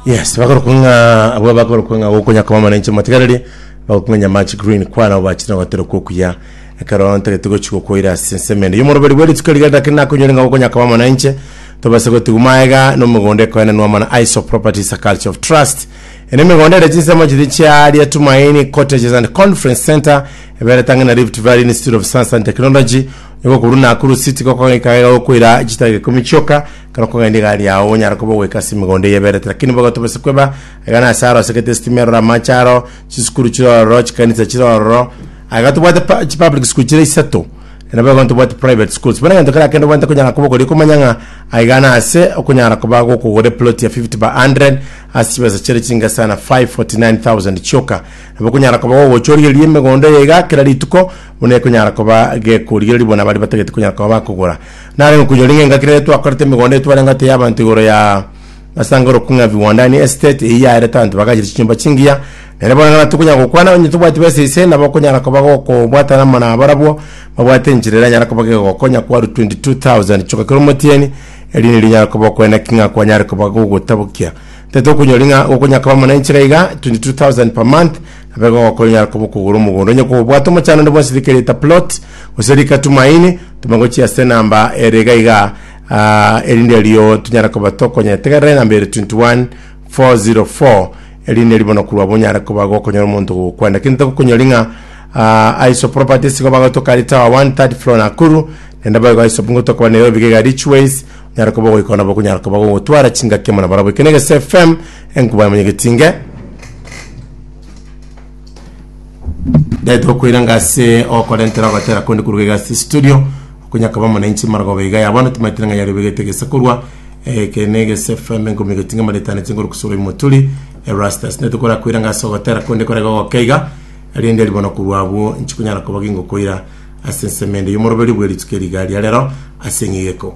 yes bakorokwa ng'a abwo bakorokwa ng'a gokonya koma mana inche matigareri bakorokwa ng'a nyamachi green kwana abo bachire gotera kokuya ekero ntagete gochi gokoira ase ensemende yomoroberi bwa rituko riga ndake nakonyore ng'a gokonya koma mana inche tobase gotigwa maega nomogondo ekoenenwa mana iso properties a culture of trust ene emegondo ere chinsemo chiri chiaria tumaini cottages and conference center eberete ang'e na rift valley institute of science and technology igo korwa nakuru city gokoika iga gokoira chitageka ikomi chioka Ekero okogenda igari yao, onyare koba ogoika ase emegondo eye eberete, lakini nigo ogotobesa kweba aiga na ase arosegete esitima eroro, amache aroro, chisukuru chire ororo, chikanisa chire ororo. Aiga tobwate pa- chipublic school chire isato, na nabo igo ntobwati private schools. Bono egento keria kende obwenerete konyara koba okoria, okomanya ng'a aiga na ase okonyara koba gokogora eplot ya 50 by 100 ase chibesa chire chinke sana 549,000 chioka. Nabo okonyara koba gogochorigereria emegondo eye iga kera rituko, buna ekonyara koba gekorigereria buna baria batagete konyara koba bakogora. Narenge okoinyora ing'enga kera ere twakorete emegondo eye twareng'ate y'abanto igoro ya Masanga Rock ng'a Viwanda, yaani Estate, eyio yaerete abanto bagaachire chinyomba chingiya, na ere bono ng'a tokonyara gokwana onye tobwati besa ise nabo okonyara koba gokobwatana amo na barabwo babwate enchera eranyare koba gegooko onye kwarwa 22,000 chioka kera omotienyi, erio nirio onyare koba okoena ki ng'a kwanyare koba gogotabokia. Tari tokonyora ing'a gokonyara koba amo na enchera iga 22,000 per month, Abego okoinyara koba okogora omogondo onye kobwate omochando onde bwonsi rike rieta plot gose rika tumaini tome gochia ase enamba ere iga iga ah, erinde erio tunyare koba tokonyetegerera enamba ere 21404 erinde erio bono korwa bonyare koba gokonyora omonto gokwenda kinte gokonyori ng'a ah, aiso property sigo bagotoka ari tower 1 third floor nakuru nende boigo aiso bungo tokoba nairobi iga iga richways onyare koba ogoikona bokonyara koba gogotwara chingaki amo nabarabwo eke na egese fm Enkuba ya monyegeti inge netokoira ngase okorentera ogotera konde koruga iga ase studio okonyakaba muna inche maragoba iga ya bono timaitire ng'a yaribegete gese korwa eke ne gese fm enkuba monyegeti inge maretane chinguru kusura imoturi erastas netokora koira ngase ogotera konde kore gogoke iga rinde ribono korwa abwo inche konyara koba gingokoira ase ensemende yomoroberio bwe rituko eri iga ria rero ase eng'egeko